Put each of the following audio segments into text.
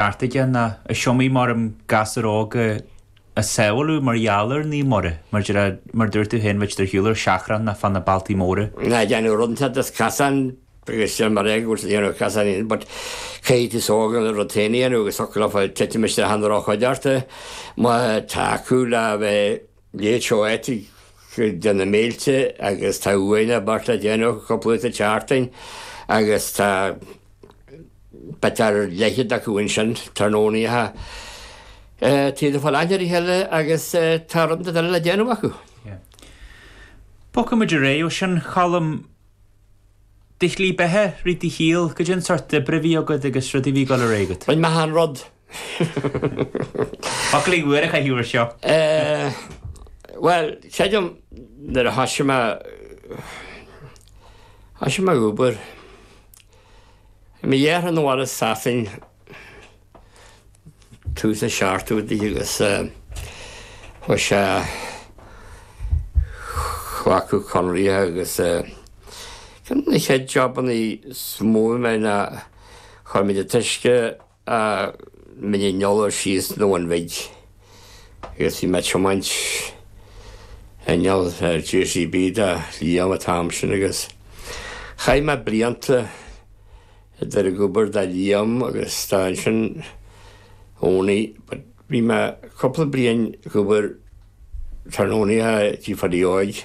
beartaithe ná is iomaí m'anam gasúr óg a sábháladh mar gheall ar Naomh Muire, mar a dúirt tú féin, a bheadh ar shiúl ar seachrán ná fá na bealtaí móra ná ag déanamh rud inteacht as casán agus seo mar é, go bhfuil tú ag déanamh casán fhéin but caithfidh an t-aos óg rud éigin a dhéanamh agus eagla fá titim isteach i ndroch-chuideachta, má tá acu le bheith Léigh Choetig cuid de na mílte agus tá uair nó beirt le déanamh cúpla lá sa tseachtain agus tá b'fhéidir a leithéid acu ansin, tráthnónaithe, taobh le fáil athléirithe eile agus tá rud nó dhó eile le déanamh acu. Bogfaidh muid ar aghaidh. Ó shin, a Cholm, do shlí beatha, rith do shaol, goidé an seort oibre a bhí agat agus rudaí a bhí ag dul ar aghaidh agat? Bhain mé an rud Foclaí úra a chaith uair seo. Bhuel, creidim nuair a thoisigh mé, thoisigh mé ag obair ag mo dheartháir 'na bhaile as Sasain tús na seachtóidí agus chuir sé cleachtadh conraithe agus na chéad jobannaí is mó ná chuir muid an t-uisce ó Mhín an Iolair síos 'na Bhuna Bhig agus bhí mé ag tiomáint inneall JCB do Liam an t-am sin agus chaith mé blianta ag dul ag obair do Liam agus do ansin Oney but bhí mé cúpla bliain ag obair idir Oney agus tigh Phádaí Óig.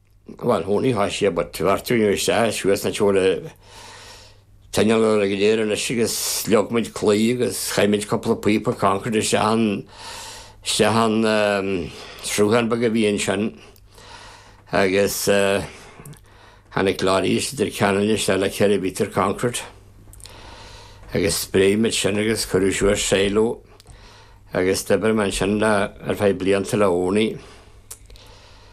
Bhuel, Oney, thoisigh sé but tabhair tú anois, a, suas an seol a teineadh orainn go léir anois agus leag muid claí agus chaith muid cúpla píopa concrete isteach an, isteach an, ehm, sruthán beag a bhí ansin agus, eh, tháinig lorries Leitir Ceanainn isteach le ceithre mhéadar concrete agus spréigh muid sin agus cuireadh suas silo agus d'oibir mé ansin le, ar feadh blianta le Oney.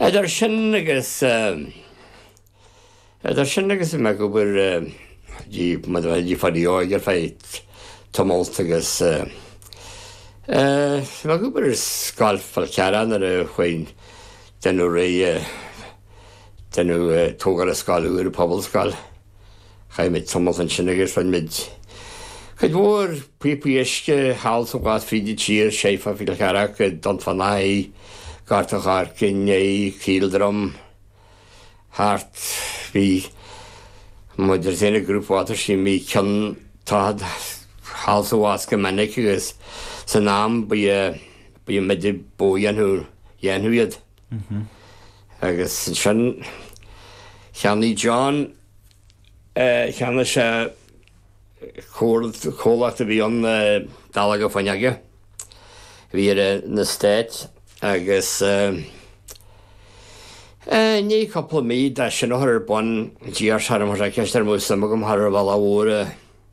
Idir sin agus idir sin agus bhí mé ag obair tigh Phádaí Óig ar feadh tamalt agus bhí mé ag obair ar scoil Fhál Carrach nuair a chuaigh deineadh réidh deineadh tógáil scoil úr, pobalscoil. Chaith muid tamall ansin agus chuir muid cuid mhór píopaí uisce thall is abhus fríd an tír, síos fá Fhál Carrach, Dún Fionnachaidh, Gort an Choirce, nó Caoldroim, thart. Bhí muid ag déanamh Group Water Scheme, bhí contract thall is abhus go minic agus san am ba iad ba iad muide a dhéanfadh dhéanfadh iad. Agus ansin, cheannaigh John, cheannaigh sé comhlacht a bhí ann Dallóga Fuinneoige, a bhí ar an eastát, agus i ndiaidh cúpla mí dó sin a chur ar bun, d'iarr sé orm, chuir sé ceist orm an mbeadh suim agam thar an bhalla mhór,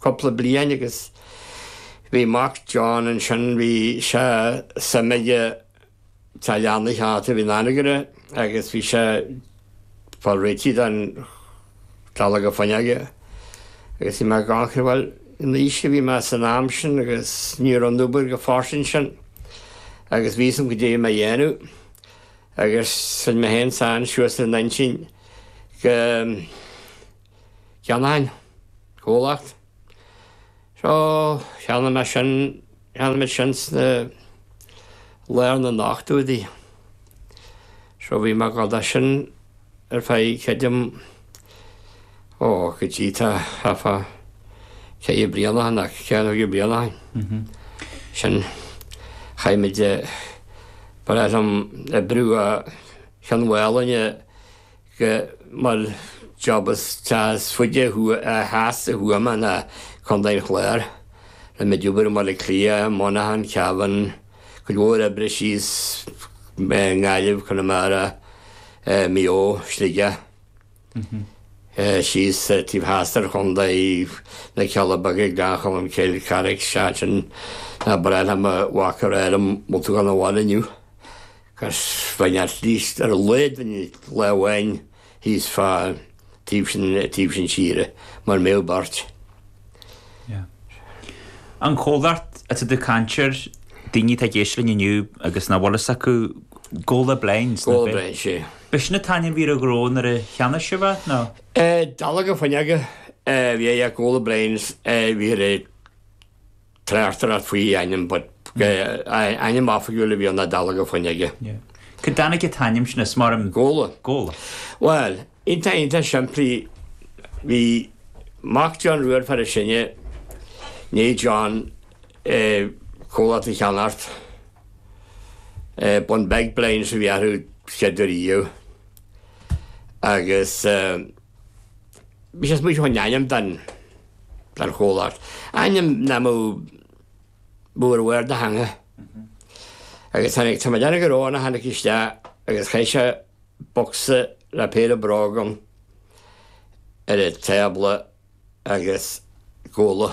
cúpla bliain agus bhí mac, John, ansin. Bhí sé suim aige teach leanna a cheannacht a bhí in Anagaire agus bhí sé ag fáil réitigh don Dallóga Fuinneoige. Agus bhí mé ag amharc, bhuel, an aois a bhí mé san am sin agus ní raibh an obair go fairsing sin agus bhí fhios agam cad é a bhí mé a dhéanamh. Agus rinne mé féin ansin suas an intinn go. gceannóinn an comhlacht. So, cheannaigh mé sin, cheannaigh mé sin sna, lár na n-ochtóidí. So bhí mé ag dul do sin ar feadh cad é, ó, go dtí tá, tá fá, ceithre bliana ann, nó ceithre nó cúig bliana ó shin. Sin, chaith muid, ba ghnách liom oibriú ó Chionn Mhálanna, mar job as teas faide thuaidh, theas i Thuama nó Contae an Chláir. Rinne muid obair i mBaile Cliath, Monaghan, Cavan, cuid mhór oibre síos i nGaillimh, Conamara, Maigh Eo, Sligeach, síos taobh theas den chontae, na Cealla Beaga, Gleann Cholm Cill, Carrick, seachtain, Ná braithfidh mo mhac ar airm bholtach ann amháin inniu. Cas fain at least ar a laghad faoin lá amháin thíos fá taobh sin taobh sin tíre mura mbeadh beirt. Yeah. An comhlacht atá tú ag caint air, daoine atá ag éisteacht linn inniu agus nach bhfuil fhios acu, Gola Blinds. Gola Blinds, yeah. B'shin an t-ainm bhí ar an ghnó nuair a cheannaigh sibh é, nó? Eh, Dallóga Fuinneoige a bhí air, Gola Blinds, eh bhí ar é. tráchtáil as faoi ainm but ainm oifigiúil a bhí ann, Dallóga Fuinneoige. Cá dtáinig an t-ainm sin as, mar. Gola. Gola. Bhuel, iontach, iontach simplí. Bhí mac John Rua an fear is sine ná John, an comhlacht a cheannacht. Bunbeg Blinds a bhí air an chéad uair. Agus. Bhí sé ag smaoitiú faoin ainm don chomhlacht. Ainm nach mbeadh mór ar do theanga. Agus tháinig tá mé dearg ar óna tháinig isteach agus chaith sé bocsa le péire bróg ann ar an tábla agus Gola.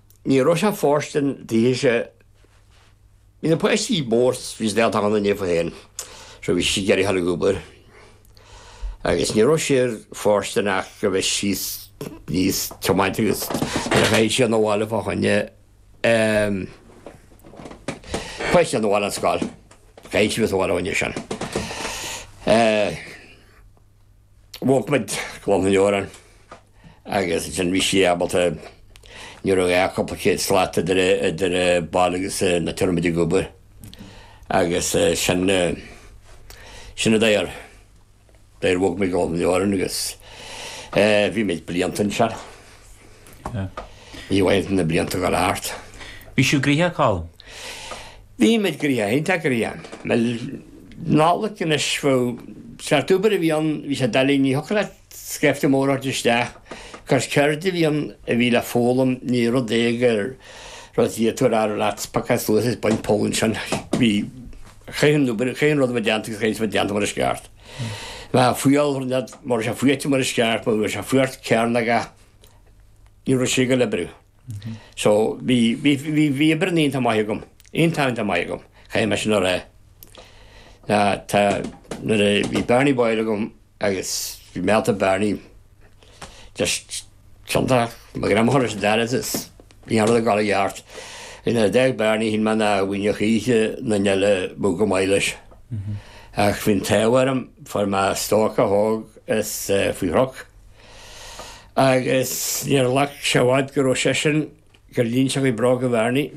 Ní raibh sé ag fóirstean daoithe sé. Bhí na páistí mór, bhí siad ag tabhairt aire daofa féin, so bhí sí ag iarraidh a dhul ag obair. Agus ní raibh sé ag fóirstean ach a bheith síos aníos ag tiomáint agus nuair a chaith sí dhul abhaile fá choinne ehm, páistí abhaile ón scoil, chaith sí dhul abhaile fá choinne sin. Eh. Bhog muid go Clon an Iorráin agus ansin bhí sí ábalta, ní raibh ach cúpla céad slat idir an baile agus an áit a raibh muid ag obair agus sin, sin an dóigh ar, ar bhog muid go Clon an Iorráin agus bhí muid blianta ansin. Bhí ann na blianta go leor. Bhí sibh gnoitheach, Colm? Bhí muid gnoitheach, iontach gnoitheach. Bhuel, Nollaig anois, bhuel, an seort obair a bhí ann, bhí sé doiligh, ní thiocfadh leat scaifte mór a thabhairt isteach, 'cause ceird a bhí ann a bhí le foghlaim, ní rud é gur rud a d'fhéadfá a rá leat, pacáil suas is bain poll ansin, bhí, chaith an obair, chaith an rud a bheith déanta agus chaith an rud déanta mar is ceart. Bheadh fuíoll thar lear mar bhí sé faoi aite mar is ceart mar bhí sé faoi ort cearn aige ní raibh sé go liobrú. So bhí bhí bhí bhí oibre na oíche maith agam, iontáin maith agam, chaith mé sin ar aghaidh. Ná tá nuair a bhí bearnaí báire agam agus bhí mealta bearnaí just Ciontach, Mo ghreamán leis an dara tis, ní hannamh ag dul i gceart. Ina dteach bearnaí shín mé ná mhaoineach oíche na nile bú go maith leis. Ach faoin taobh orm, fuair mé stoic a thóg is faoi shroc. Agus níor ghlac sé i bhfad go raibh seisean gur líon sé bróga Bharney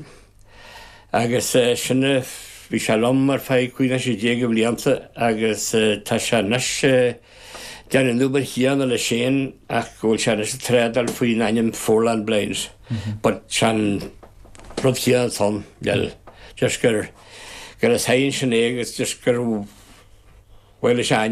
agus sin, bhí sé liom ar feadh cúig nó sé déag de bhlianta agus tá sé anois ag déanamh an obair chéanna leis féin ach go bhfuil sé anois ag trádáil faoin ainm Foreland Blinds but tá an rud céanna ann, bhuel, just gur, gur leis féin sin é agus just gur, bhuel, is é a ainm.